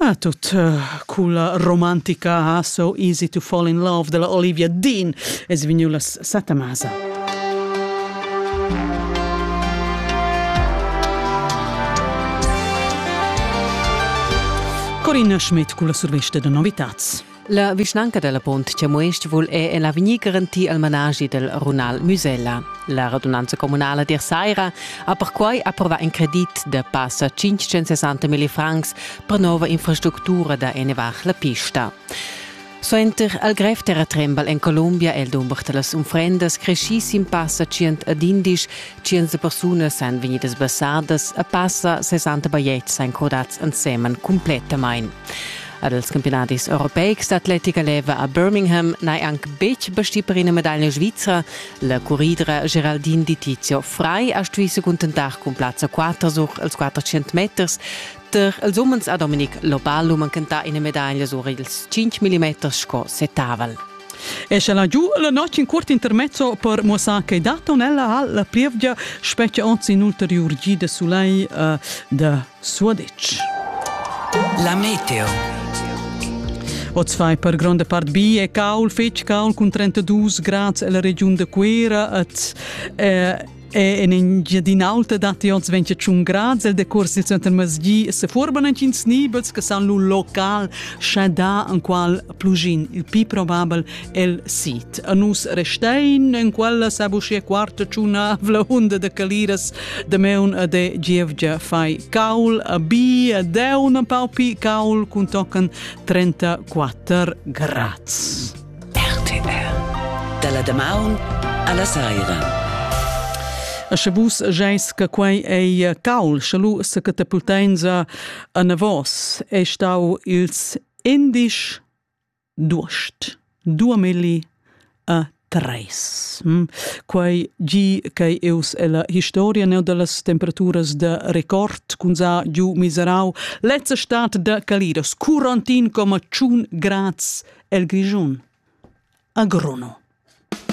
Ah, tut uh, culla romantica ah, So Easy to Fall in Love della Olivia Dean es vegniu las setta masa. Corinna Schmidt culla survista da novitats. La vischnanca della Pont Cemuest vul è en l'avegnir garantir il managi del runal Musella. La radunanza comunala dir Saira ha perquai approvat in credit de passa 560.000 francs per nova infrastructura da ennevar la pista. Suenter al grev terratrembal en Colombia el dumber da las unfrendas cresci sin passa 111 500 persunas san vegnidas basardas a passa 60 bajetgs san codats ensemen completamain. Ad els campionadis europeics d'atletica leva a Birmingham n'hai anc betg bastì per ina medaglia svizra. La curridra Geraldine Di Tizio Frei ha stuì se cuntentar cun plazza 4 sur els 400 meters. Tar els umens ha Dominic Loballo manchentà ina medaglia sur ils 5 mm sco setavel. E sche la giu la notg in curt intermezzo per muossar che data tonella ha la plievgia spetga onz in ulteriur gi de sulai uh, de Suaditsch. La meteo. Oz fai per gronda part bi e caul, fetg caul cun 32 grads alla regiun de Cuera et eh, e en Engiadin'Alta datti oz 21 grad. Il decurs dil center masgi se forban entgins nibels che san lu local schadà en qual plugin il pi probabel el sit. A nus restein en quella sabuschia quarta tschunavla unda de caliras de meun a de gievgia fai caul a bi a deu una paupi caul cun tocan 34 grads. RTR Dalla damaun alla saira. A sche vus geis che quei ei caul, sche lu se catapultenza a navos, e stau ils indisch Duost. Duamilli e tres. Quai gi ch'ei eus ella historia neu dallas temperaturas da record cun za giu miserau lezza stat da Calidas curantin coma tschun grads el Grischun. A Gruno.